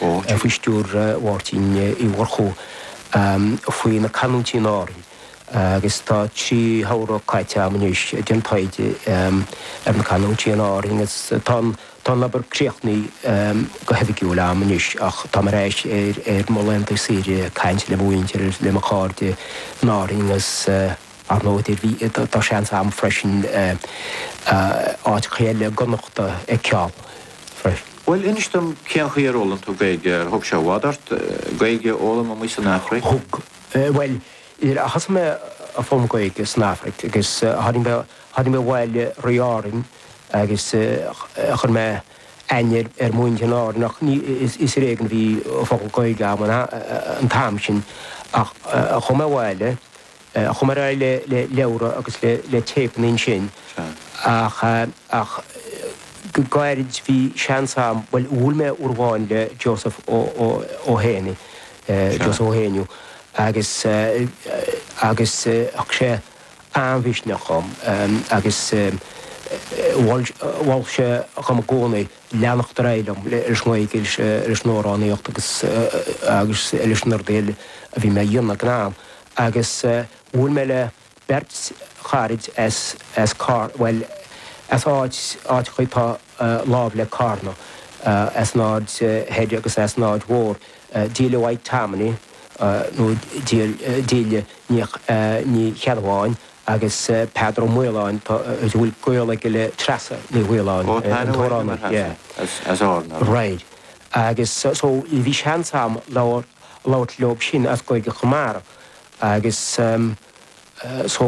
faoi stiúir Mháirtín Uí Mhurchú, faoi na canúintí in Árainn agus tá trí shamhradh caite agam anois ag déanamh taighde ar na canúintí in Árainn agus tá an obair críochnaithe go hoifigiúil agam anois ach táim ar ais ar mo laethanta saoire ag caint le mo mhuintir, le mo chairde in Árainn agus. Ar ndóigh, tá seans ann freisin áiteachaí eile i gConnachta a fheiceáil freisin. Bhuel, inis dom cén chaoi ar fhoghlaim tú Gaeilge? Ar thug sé i bhfad ort Gaeilge a fhoghlaim amuigh san Afraic? Thug. Bhuel, thosaigh mé ag foghlaim Gaeilge san Afraic agus tháinig mé, tháinig mé ar bhealach trí Árainn agus chuir mé aithne ar mhuintir in Árainn ach ní, is ar éigean a bhí focal Gaeilge agam an t-am sin ach chuaigh mé abhaile, chuaigh mé ar aghaidh le leabhra agus le téipeanna ansin ach ach go gairid bhí seans agam bhuel bhuail mé uair amháin le Joseph ó ó ó hÉanaí Joseph Ó hÉanaí agus agus thug sé an-mhisneach dhom agus mhol mhol sé dhom i gcónaí leanacht ar aghaidh liom leis an Ghaeilge leis an amhránaíocht agus agus leis na rudaí eile a bhí mé a dhéanamh ag an am. agus bhuail mé le beirt charaid as, as Car-, bhuel, as áit, áit atá lámh le Carna, as an Aird Thoir agus as an Aird Mhóir, Delia White Tammany, nó Del-, Delia Ní, Ní Cheannabháin, agus Peadar Ó Miolláin, tá, a bhfuil gaol aige le Treasa Ní Mhiolláin, an t-amhránaí, as, as Árainn. Right. Agus so bhí seans agam labhair labhairt leob sin as Gaeilge Chonamara agus so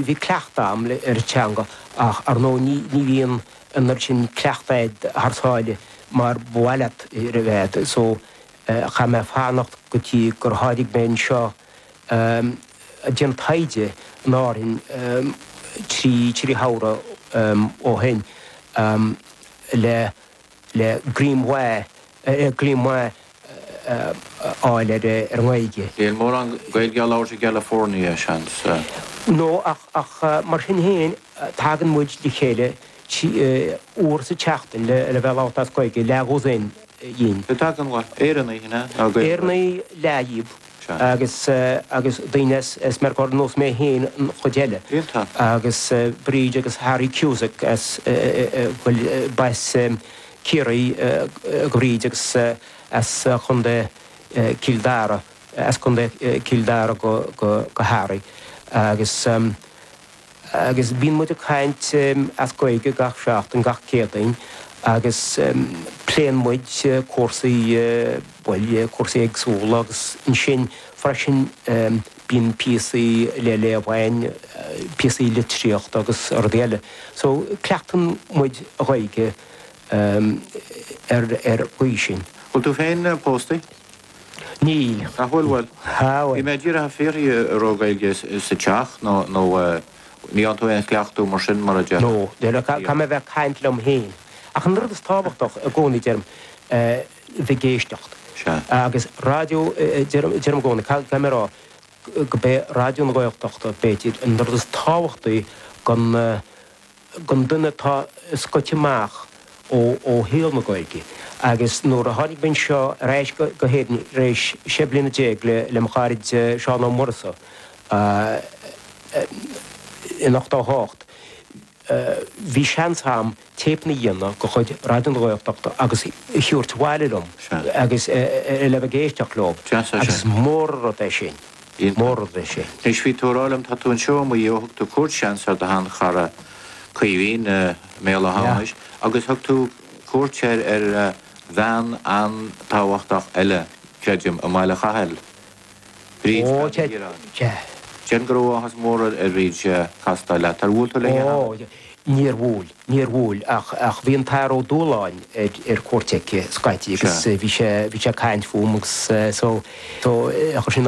bhí cleachtadh agam ar an teanga ach ar ndóigh ní bhíonn an oiread sin cleachtaidh agat thar sáile mar ba mhaith leat a bheith so chaith mé fanacht go dtí gur tháinig mé anseo ag déanamh taighde in Árainn trí shamhradh ó shin le le greim maith a fháil ar an nGaeilge. Níl mórán Gaeilge á labhairt i gCalifornia, seans. Nó, ach mar sin féin, tagann muid le chéile uair sa tseachtain le bheith ag labhairt as Gaeilge, leathdhosaen dínn. Cé a thagann ann? Éireannaigh, an ea? Nó Gaeilgeoirí? Éireannaigh leath dhíobh. seo. Agus, agus daoine as Meiriceá ar nós mé féin an chuid eile. Iontach. Agus Bríd agus Harry Cusack as bhuel, b'as Ciarraí do Bhríd agus as Chontae Chill Dara, as Contae Chill Dara do Harry. Agus. agus bíonn muid ag caint as Gaeilge gach seachtain, gach Céadaoin, agus pléann muid cúrsaí, bhuel, cúrsaí éagsúla, agus ansin freisin bíonn píosaí le léamh a'inn, píosaí litríochta agus rudaí eile. So, cleachtann muid a' Ghaeilge ar, ar, ar an gcaoi sin. Bhfuil tú féin póstaí? Níl. Níl? Bhuel, bhí mé díreach ag fiafraí a raibh Gaeilge sa teach nó ní dhearna tú aon chleachtadh mar sin, mar a déarfá. Nó, nó caithfidh mé a bheith ag caint liom féin. Ach an rud is tábhachtaí i gcónaí, deirim, bheith ag éisteacht. Sea. Agus raidió, deirim i gcónaí, caithfidh mé a rá go b'é Raidió na Gaeltachta, b'fhéidir, an rud is tábhachtaí don. don duine atá scoite amach ó shaol na Gaeilge. Agus nuair a tháinig mé anseo ar ais go hÉirinn tar éis sé bliana déag le mo charaid Seán Ó Murchú in ochtó hocht, bhí seans a'm téipeanna a dhéanamh de chuid Raidió na Gaeltachta agus a thabhairt abhaile liom agus a bheith ag éisteacht leo. Agus is mór an rud é sin. Bhí mórán leis sin. Anois bhí tú ag rá liom, tá tú anseo i Maigh Eo ó thug tú cuairt ansin ar do shean-chara Caoimhín i mBéal Átha hAmhnais agus thug tú cuairt ar bhean an-tábhachtach eile, creidim, i mBaile Chathail, Bríd Pheaid Ní Dhioráin. Déarfainn go raibh áthas mór ar Bhríd castáil leat. Ar bhuail tú léi cheana? Níor bhuail, níor bhuail, ach bhí an tAthair Ó Dualáin ar cuairt aici scaití agus bhí sé ag caint fúm agus chuir sin